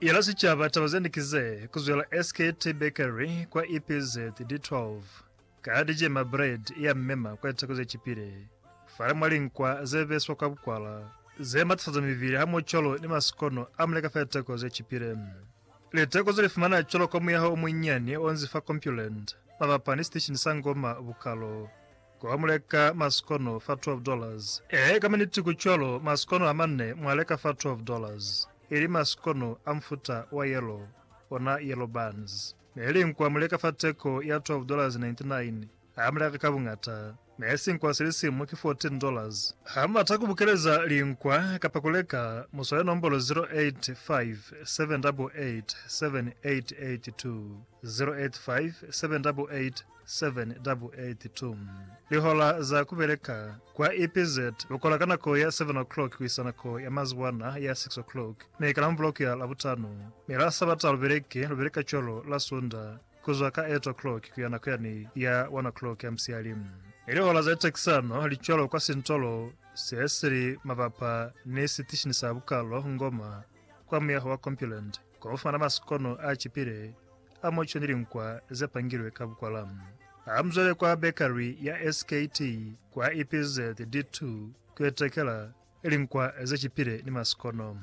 Yela sicaba taba zende ki ze, Ku zwela SKT Bakery kwa EPZ D12, ka dijema bread ya mema kwa litako ze cipile, fale mwa linkwa ze beswa kwa bukwala, ze matafaza mibili hamoho cwalo ni masikono a muleka fa litako ze cipile. Litako ze li fumana cwalo kwa muyaho o munyinyani onzi fa Compuland, mabapa ni siteshini sa Ngoma Bukalo. Koba muleka masikono fa twelve dollars. Ee, ka maniti ku cwalo, masikono amane mwa leka fa twelve dollars, ili masikono a mufuta wa yellow, ona yellow buns. Neli nkwa muleka fa teko ya twelve dollars ninety nine, ha muleka ka buñata. Ne si nkwa silisimu ki fourteen dollars. Ha mubata ku bukeleza linkwa kapa ku leka, muswale nombolo zero eight five seven double eight seven eight eight two, zero eight five seven double eight 782 Lihola za kubeleka kwa EPZ lukola ka nako ya 7 o'clock kuisa nako ya mazuwana ya 6 o'clock mi ka Lamuvula kuya Labutano, mi la Sabata lubeleki lubeleka cwalo la Sunda kuzwa ka 8 o'clock kuya nako yani ya 1 o'clock ya musiyali. Mi lihola za litekisano li cwalo kwa sintolo se sili mabapa ni sitishini sa bukalo Ngoma kwa muyaho wa Compuland. Kono ufumana maskono a cipile a moco ni linkwa ze pangilwe ka bukwala. Hamuzwale kwa bakery ya SKT kwa EPZ D2 kuyo tekela linkwa ze cipile ni maskono.